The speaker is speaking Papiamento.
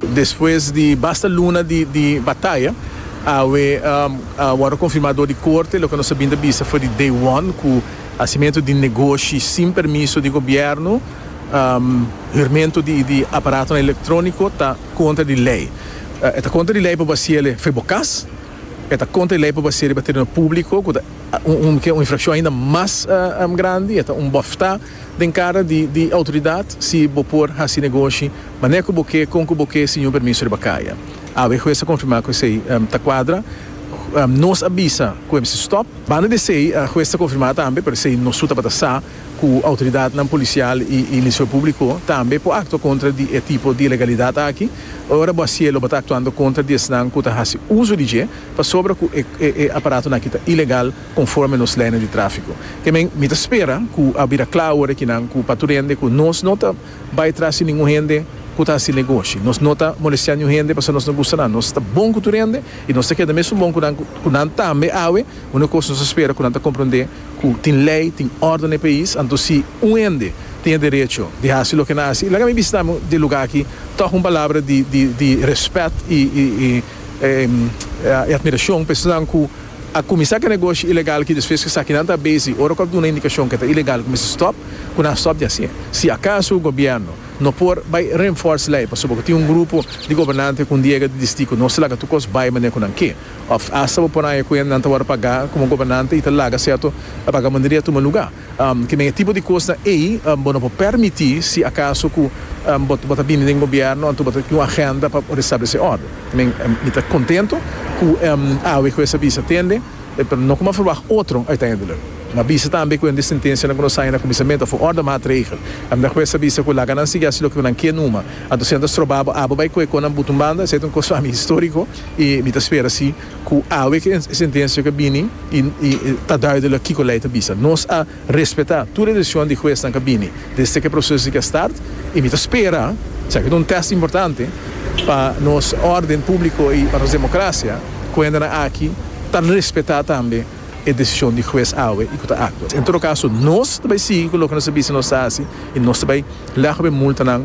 Despues di basta luna di di bataya awe a wordo confirma door di corte loke nos a bin ta bisa for di day one cu hacimentu di negoshi sin permiso di gobierno, hurmento di di aparatonan electronico ta contra di ley. E ta contra di ley pa basia el for bo cas, e ta contra di ley pa basia riba tereno publico cu ta un infraccion ainda mas grandi, e ta un bofta. den cara di di autoridad si bo por haci negoshi, mane cu bo ke, con cu bo ke, sin un permiso riba caya. Awe e hues a confirma cu esey ta cuadra. Nos a bisa cu e mester stop. Banda di esey e hues ta confirma tambe, pero esey no su tabata sa cu autoridadnan policial y y Ministerio Publico tambe por actua contra di e tipo di ilegalidad aki. Ora bo a sie lo bo ta actuando contra di esnan cu ta haci uso di dje, pasobra cu e e e aparatonaki ta ilegal. conforme nos leynan di trafico. Te men mi ta spera cu a bira cla awor ekinan cu pa tur hende cu nos no ta bay tras di ningun hende cu ta haci negoshi, nos no ta molestia niun hende pasobra nos no gusta nan, nos ta bon cu tur hende y nos ta keda mesun bon cu nan, cu nan tambe awe, unu cos nos ta spera cu nan ta comprende cu tin ley, tin orde n'e pais, anto si un hende tin e derecho di haci loke nan haci, laga mi bisita amo di e lugar aki tog un palabra di di di respet y y y admiracion pa esanan cu. a kuminsá ku e negoshi ilegal ki despues ku sakinan ta besi ora ku a duna indikashon ku e ta ilegal kuminsá stòp, ku nan stòp di hasié. Si akaso gobièrnu no por bai renfòrs lei pasobra ku tin un grupo di gobernante ku un diega di distí ku no ta laga tur kos bai manera ku nan ke, òf asta bo por haña ku nan ta wòrdu pagá komo gobernante i ta laga sèrto labaga manera di a tuma lugá. Kimen e tipo di kosnan ei bo no por permití si akaso ku bo bo ta bini den gobièrnu anto bo ta tin un agenda pa restablesé òrden. Kimen mi ta kontentu ku awe ku e sabisa tende, pero no kuma verwagt otro uiteindelijk. Mi a bisa tambe ku hende sentenshanan ku nos haña na kuminsamentu a for òrda maatregel. A mira ku e sabisa ku laga nan sigui hasi loke ku nan ke numa, anto si nan ta stroba bo, abo bai kohe konan but un banda. Esei ta un kos pa mi históriko i mi ta spera si. Ku awe ku e sentensia ku a bini i ta duidelik kiko lei ta bisa. Nos a respetá tur e desishon di huesnan ku a bini desde ku e proseso tika start i mi ta spera, esaki ta un tèst importante pa nos órden públiko i pa nos demokrasia, ku hendenan aki ta respetá tambe e desishon di hues awe i ku ta aktua. En todo kaso nos ta bai sigui ku loke nos a bisa nos ta hasi i nos ta bai lègba e multanan.